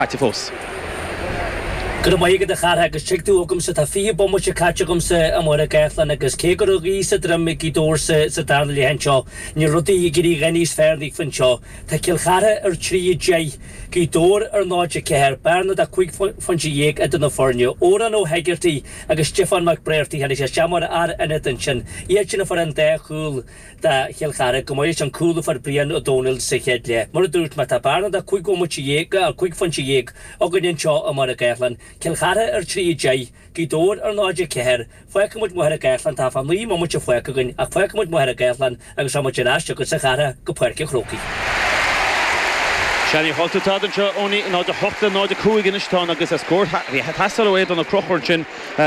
caite fós. Go raibh maith agat a Chárthaigh agus tig tú chugamsa, tá fiche bomaite caite agamsa i Machaire Gathlán agus cé go raibh gaoth sa droim ag Gaoth Dobhair sa darna leath anseo, níl rudaí ag éirí a dhath níos fearr daofa anseo. Tá Cill Chartha ar 3 10, Gaoth Dobhair ar 0 4, bearna de chúig phointe dhéag idir na foirne. Odhrán Ó hEigeartaigh agus Stiofán Mac Bréartaigh, tháinig sé isteach mar fhear ionaid ansin. Iad sin a fuair an dá chúl. do Chill Chartha ag gabháil leis an chúl a fuair Brian Ó Domhnaill sa chéad leath. Mar a dúirt mé, tá bearna de chúig bhomaite dhéag, go áil cúig phointe dhéag, againn anseo i Machaire Gathlán, Cill Chartha ar 3 10, Gaoth Dobhair ar 0 4. Fágfaimid Machaire Gathlán, tá fá naoi mbomaite fágtha againn, ach fágfaimid Machaire Gathlán agus tá muid ar ais chugatsa a Chárthaigh go Páirc an Chrócaigh. Seán Uí Dhubhthaigh atá anseo ó 0 8 le 0 5 anois. Tá an agus scór a bhí ag teastáil ó Aodán Ó Crochúir ansin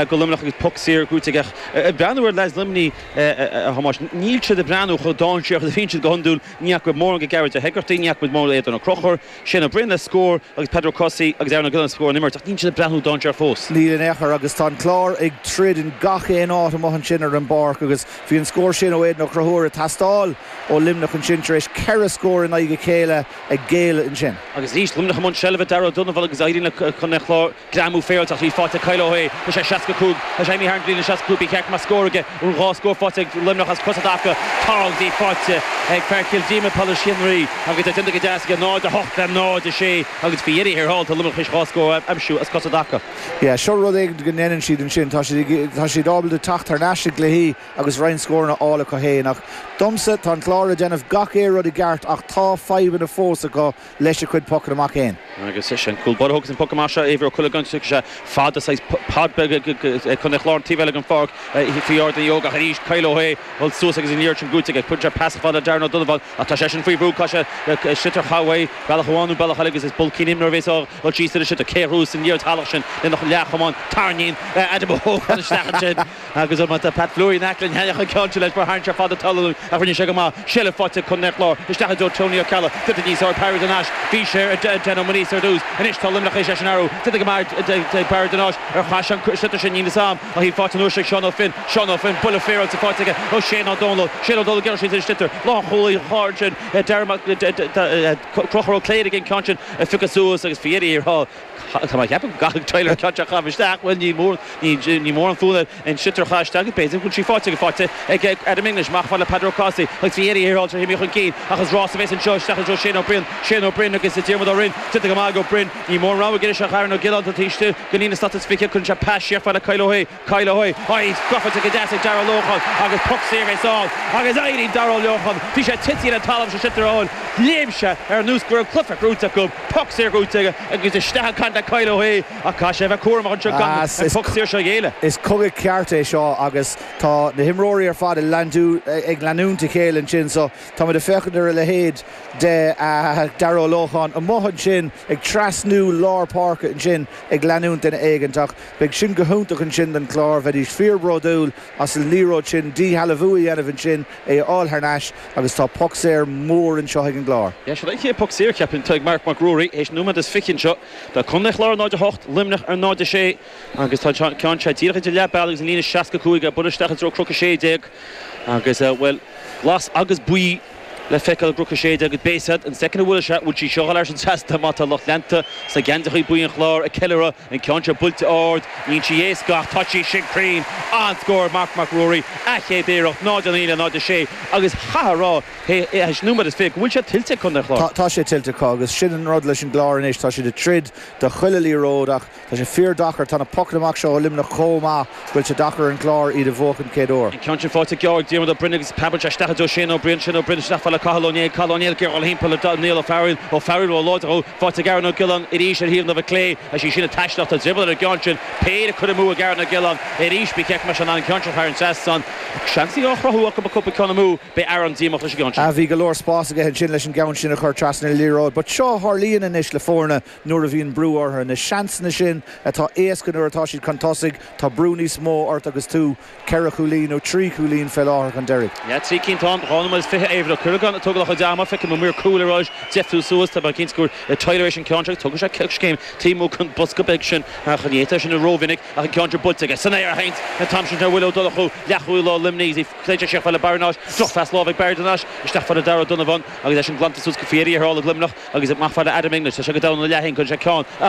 go Luimneach agus poc saor gaoite ag breathnú ar leads Luimní. a Thomáis, níl siad ag breathnú chomh dáinséarach is a bhíonn siad go hiondúil, ní fhaca muid mórán de Ghearóid Ó hÉigeartaigh, ní fhaca muid mórán d'Aodán Ó Crochúir, Shane Ó Briain le scór agus Peadar Ó Cathasaigh agus Aaron Ó Giolláin le scór ón imirt ach níl siad ag breathnú dáinséarach fós. Níl in aon chor agus tá an Clár ag troid in gach aon áit amuigh ansin ar an bpáirc agus bhí an scór sin ó Aodán Ó Crochúir ag teastáil ó Luimneach ansin tar éis ceithre scór i ndiaidh a chéile a ghéilleadh ansin. Agus arís, Luimneach i mbun seilbhe, Darragh Ó Donnabháin agus éiríonn le Contae an Chláir, greamú féaráilte, ach bhí faighte ag Kyle Ó hAodha leis an 65, tá sé imithe thar an gcliath le 65, bhí ceart mar scór aige ón dhá scór faighte ag Luimneach as cosa i dtaca Carl. Bhí faighte ag fear Chill Díoma Pailís Chaonraí, agus é déanta go deas aige, 0-8 le 0-6, agus faoi dheireadh thiar thall, tá Luimneach tar éis dhá scór a aimsiú as cosa i dtaca. Yeah, sure rud éigin go ndeineann siad ansin, tá siad, tá siad ábalta teacht thar n-ais i gcluichí agus roinnt scóranna a fháil acu fhéin ach domsa, tá an Clár ag déanamh gach aon rud i gceart ach tá fadhbanna fós acu leis a gcuid pocanna amach fhéin. Agus an cúl báire a thógas an poc amach seo Éibhear Ó Cuilleagáin agus thug sé fada, saghas pad beag chun chlár an taobh eile den pháirc faoi Ardán Uí Ógáin ach arís Kyle Ó hAodha ag dul suas agus an liathróid sin buaite aige. Cuireann sé pas fada Darragh Ó Donnabháin ach tá seisean faoi bhrú, caithfidh sé an sliotar a chaitheamh uaidh bealach amháin nó bealach eile agus is bulcín imreoirí a bhéas ag dul síos ar an sliotar. Cé a thabharfas an liathróid shalach sin lena chamán? Tarraingíonn Adam Ó hÓgáin isteach ansin. Agus an bata Pat Fleury in aice le Sheanchas ag ceann leis, mar tarraingt ar fad an talaimh ach rinne sé go maith, seilbh faighte ag Contae an Chláir isteach i dtreo Tony Ó Ceallaigh. Titfidh níos fearr Barry de Nais. Bhí sé ar Dan Ó Muiríosa ar dtús. Anois tá Luimneach tar éis é sin a athrú. Titfidh go Barry de Barry de Nais ar chas an sliotar sin níl fhios am ach í faighte an uair seo ag Seán Ó Finn. Seán Ó Finn buille féaráilte faighte aige ó Shane Ó Domhnaill. Shane Ó Domhnaill gearradh síos ar an sliotar. Lánchúlaí an Chláir ansin Conchúr Ó Cléirigh an ceann sin a phiocadh suas agus faoi dheireadh thiar Tá mé ag ceapadh go gcaithfidh Tyler clutch a chaitheamh isteach. Bhuel, ní mór, ní, ní mór an fonn air an sliotar a chaitheamh isteach. B'fhéidir go bhfuil sí faighte aige, faighte ag Adam English, amach fá le Peadar Ó Cathasaigh agus bhí ag iarraidh a shaoráilte a shuimigh chun cinn. Ach is rás a bheas anseo, isteach anseo Shane Ó Briain, Shane Ó Briain agus Diarmuid Ó Riain. Déanta go maith ag Ó Briain. Ní mórán rogha aige anois ach Aaron Ó Giolláin, atá taobh istigh den aon slat is fiche, cuireann sé pas síochmhar le Kyle Ó hAodha. Kyle Hoy, Hoy! Scuabáilte go deas ag Darragh Ó Lócháin agus poc saor é sall agus éirigh Darragh Ó Lócháin. Bhí sé tite ar an talamh sa sitr eoin. Léim sé aníos go raibh cluiche chrúite acu, poc saor chrúite aige agus isteach ag caint le Kyle Hoy ach caithfidh sé a bheith cúramach anseo gan an poc saor seo a ghéilleadh. Is cogadh ceart é seo agus tá na himreoirí ar fad ag leanúint a chéile ansin so táimid ag féachaint ar a leithéid de Darragh Ó Lócháin amuigh ansin ag trasnú lár páirce ansin ag leanúint duine éigint ach Beidh sin go hiontach ansin don Chlár, bheidís fíorbhródúil as an liathróid sin, díshealbhú a dhéanamh ansin, é a fháil thar n-ais agus tá poc saor mór anseo ag an gClár. Sea, sin é an chéad poc saor, cheapfainn, atá ag Marc Mac Ruairí théis nóiméad is fiche anseo. Tá Contae an Chláir ar 0, 8, Luimneach ar 0, 6 agus tá an ceann seo díreach idir leath bealaigh agus an líne 65 á bualadh isteach i dtreo Chnoc 16 agus, bhuel, glas agus buí. le feiceáil i gCnoc 16 agus beidh a fhios a'd, an soicind a bhfuil sé, bhfuil sí seo ag dul thar an trasnán má tá lucht leanta sna geansaithe buí an Chláir ag ceiliúradh, an ceann seo buailte ard, níonn sí éasca ach tá sí sin cruinn. An-scór Marc Mac Ruairí, a chéad iarracht, 0-9 le 0-6, agus chaithfeá a rá théis nóiméad is fiche go bhfuil sé tuillte ag Contae an Chláir. Tá sé tuillte acu agus sin an rud leis an gClár anois, tá siad ag troid do chuile liathróid ach, Tá sé fíordheacair. Tá na pocanna amach seo ó Luimneach chomh maith go bhfuil sé deacair ar an gClár iad a bhuachan den chéad uair. An ceann sin faighte ag Geábh, ag Diarmaid Ó Broin agus ag Peadar Joe Staffidy, Shane Ó Briain, Shane Ó Briain, isteach fad le Cathal Ó Néill, Cathal Ó Néill, ag iarraidh a ghabháil timpeall ar Niall Ó Fearghail, Ó Fearghail róláidir dhó, faighte ag Aaron Ó Giolláin, arís ar thaobh na láimhe clé, is í sin an taisleach, tá drioball ar an gceann sin, péire curtha amú ag Aaron Ó Giolláin, arís bí cinnte mar sin, an ceann sin thar an trasnán, seansannaí á gcruthú acu ach á gcur amú, beidh Aaron díomách leis an gceann sin. Bhí go leor spáis aige ansin leis an gceann sin a chur trasna an liathróid but seo a tharlaíonn anois le foirne nuair a bhíonn brú orthu. Na seansanna sin atá éasca nuair atá siad chun tosaigh, tá brú níos mó ort agus tú ceithre chúilín, nó trí chúilín fé láthair, chun deiridh. Ní hea, trí cinn táim. Dhá nóiméad is fiche Éibhear Ó Cuileagáin ag tógáil a chuid ama. Feicim an maor cúil ar ais á dheifriú suas. Tá mé cinnte go bhfuil an réiteoir tar éis an ceann seo agus tógfaidh sé coiscéim taobh amuigh den bhosca beag sin a choinnítear sin rómhinic ach an ceann sin buailte aige san aer a sheinnt an t-am sin ar Willie Ó Donnchú, leathchúlaí láir Luimnigh. Caitear siar chomh fad le Barry de Nais. Drochphas láimhe ag Barry de Nais. Isteach fad le Darragh Ó Donnabháin. Agus í sin glanta suas go fíor, i a thrálaigh Luimneach, agus amach fad le Adam English, tá sé go domhain ina leath féin, cuireann sé ceann.